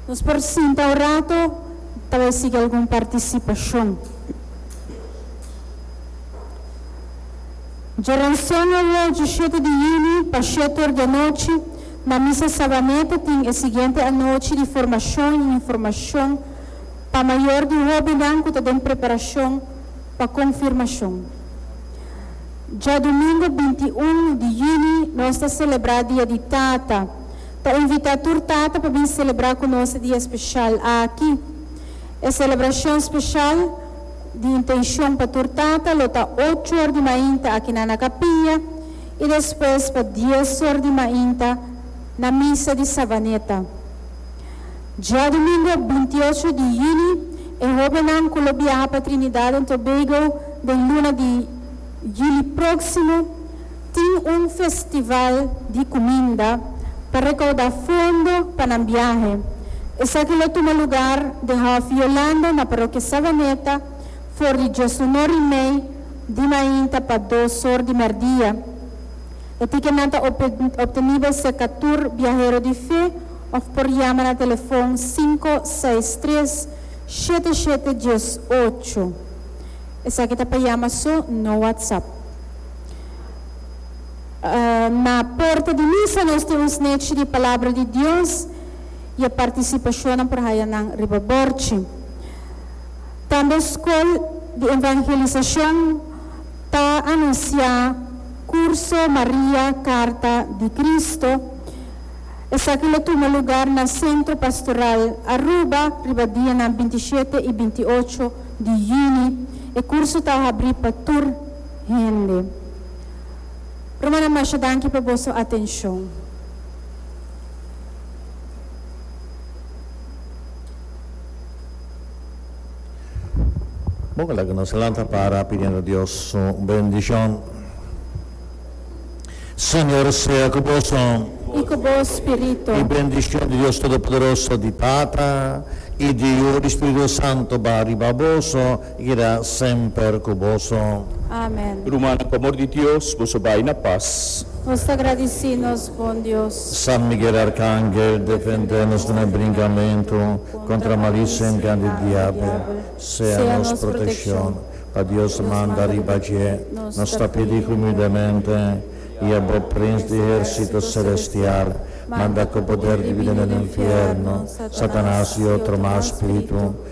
Nos por sinta un rato pa bai sigui algun partisipacion. Djorancion awor diecisiete di juni pa shete or di anochi na Misa Sabaneta tin e siguiente anochi di formacion y informacion pa mayor di hobennan cu ta den preparacion pa confirmacion. Djadomingo bintiun di juni nos ta celebra Dia di Tata. Ta invitá tur tata pa bin selebrá ku nos e dia speshal aki. E selebrashon speshal di Intenshon pa tur tata lo ta ocho or di mainta akinan na kapia i despues pa dies or di mainta na misa di Savaneta. Diadumingu bintiocho di yuni e hóbennan ku lo biaha pa Trinidad en Tobago den luna di yuli próksimo, Tin un festival di cuminda pa recauda fondo pa nan biahe. Esaki lo tuma lugar den Hof Yolanda na Parokia Savaneta for di dios un or y mei di mainta pa dos or di merdia. E ticketnan ta obtenibel cerca tur biahero di fe of por yama na telefon cinco, seis, tres, shete, shete, dies, ocho. Esaki ta pa yama so, no WhatsApp. Na porta di misa nos tin un snechi di Palabra di Dios y e participashonnan por haya nan riba borchi. Tambe Scol di Evangelisacion ta anuncia Curso Maria Carta di Cristo. Esaki lo tuma lugar na Centro Pastoral Aruba riba dianan binti shete y binti ocho di juni. E curso ta habri pa tur. Hende. Rumannan masha danki pa boso atencion. Bon, laga nos a lanta para pidiendo Dios su bendicion. Señor sea cu boso. I cu bo spirito. I bendicion di Dios Todopoderoso, di Tata, i di Yu, di Spirito Santo, ba riba boso Guida semper ku boso. Amen. Rumannan pa amor di Dios boso bai na pas. Nos ta gradisí nos Bon Dios. San Miguel Arkangel defendé nos den e brinkamentu kontra malisem kan di diabel sea nos protekshon pa Dios manda riba dje nos ta pidi humildemente i a bo prins di ehersito selestial manda ku poder di vida den e nfierno Satanas i otro mas spiritu